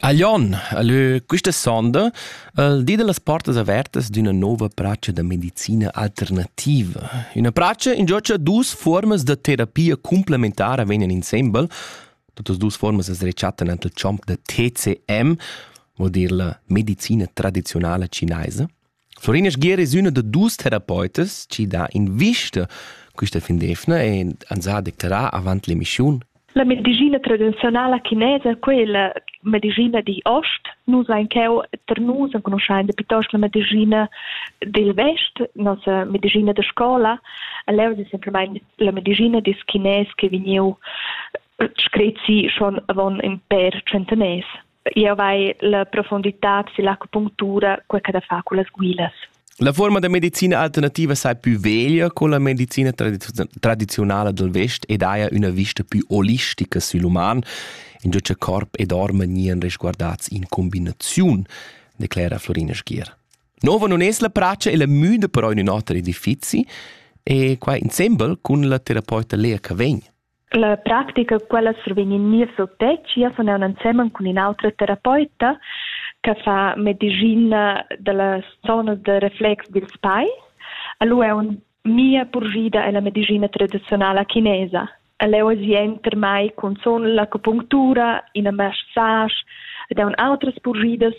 A Lyon ha lö quista sonda il di da las portas avertas d'üna nouva pracha da medicina alternativa. Üna pracha ingio cha duos fuormas da terapia cumplementara vegnan insembel. Tutas duos fuormas as rechattan ant il chomp da TCM, vuol dir la medicina tradiziunala cinaisa. Florina Sgier es üna da duos terapeutas chi dà invista quista fin d'eivna e ans ha declerà avant l'emischiun. La medischina tradiziunala chinesa, quella medischina digl ost, nus ein cheu tar nus enconuschein piuttosto la medischina dil vest, nossa medischina da scola. Leu è semplamein la medischina dil chinès che vegniu screzi schon avon in per centeners. Jau vai la profunditad silla acupunctura, quei che da far con las guilas. La forma da medicina alternativa sai più veglia con la medicina tradizionale del Vest ed haja una vista più olistica sull'uman, in già che corp e dorma nien resguardats in combinazione, declera Florina Schier. Nova non es la praccia e la müda però in un oter edifizi e qua insembel con la terapeuta Lea Cavegn. La practica quella survegn in niev suttetg, jeu sun aunc ensemen cun in'autra terapeuta che fa medischina dalla zona da reflex dils pais. Lu è un mia purgida è la medischina tradizionala chinesa. El è ozi enter mai cun son l'acupunctura, in massage ed un outras purgidas.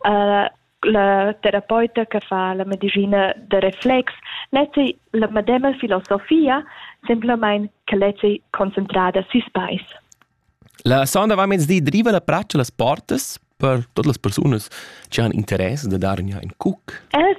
Uh, la terapeuta che fa la medicina da reflex leti la medema filosofia, semplamain che leti concentrada sui spais. La sonda va mezdi driva la praccia las portas per todas las persunas che han interesse da dar in cuc. Els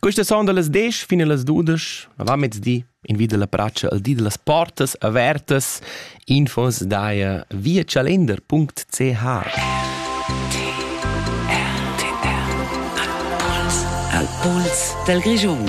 Questa sonda las desch fin las dudesch, avant-mezdi, invida la bratscha al di da las portas avertas, infos daia via chalender.ch. Al puls dal Grischun.